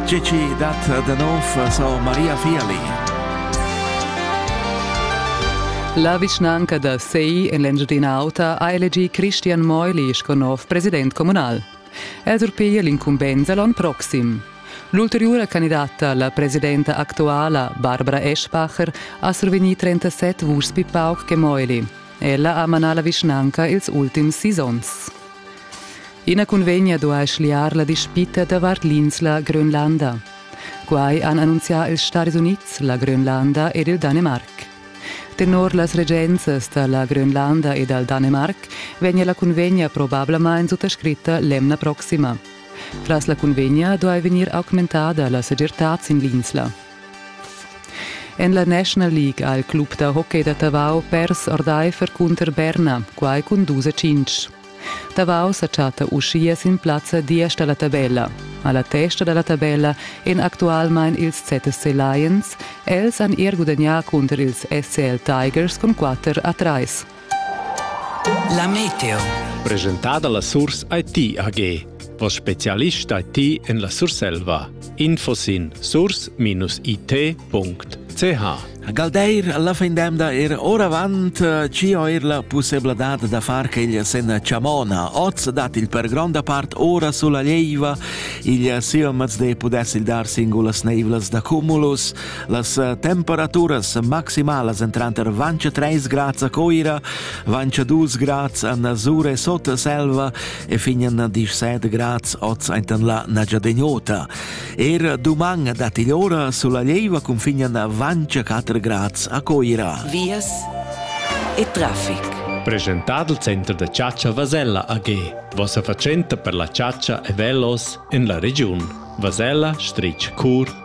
Gigi dat da nov sur Maria Viali. La vischnanca da Sei en l'Engiadina Auta ha elegì Christian Meuli sco nov president communal. El surpiglia l'incumbensa l'onn proxim. L'ulteriura candidata, la presidenta actuala, Barbara Eschbacher, ha survegnì 37 vuschs pli pauc che Meuli. Ella ha manà la vischnanca ils ultims sis onns. Ina cunvegna duai schliar la dispita davart l'insla Grönlanda. Quai han annunzià ils Stati Unids, la Grönlanda ed il Danemarc. Tenor las regenzas da la Grönlanda e dal Danemarc vegnia la cunvegna probablamain suttascritta l'emna proxima. Tras la cunvegna duai vegnir augmentada la segirtad sin l'insla. En la National League ha il club da hockey da Tavau pers ordaifer cunter Berna, quai cun dus a cinc. Tavau sa chatta uschia sin plazza diesch da la tabella. A la testa da la tabella èn actualmain ils ZSC Lions. Els han er gudagnà cunter ils SCL Tigers cun 4 a 3. La meteo. Presentada la Surs IT AG. Vos specialist IT en la Surselva. Info sin surs-it.ch Galdeir alla fin d'emda er oravant eh, ci ho er la possibilità da far che il sen chamona oz dat il per gronda part ora sulla leiva il siomaz de pudessi dar singulas neivlas da cumulus Las eh, temperaturas maximalas en tranter vanch 3 grads a Coira, vanch 2 grads en Sure sot selva e fin en 17 grads oz enten la Nagiadegnota. Er duman dat il ora sulla leiva confinen vanch 4 grads a Coira. Vias e traffic. Presentad il center da caccia Vasella AG, vossa fatschenta per la caccia e velos en la regiun. Vasella, Stritsch, Cur,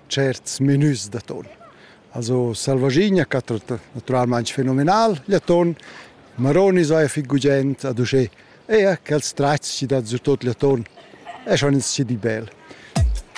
certs menüs d'atun. Also selvaschina catta naturalmaing fenomenal gl'aton, maroni saja fich gugent ad uschè. Eir quels tratgs chi dat sü tuot gl'aton eschan ins schi di bel.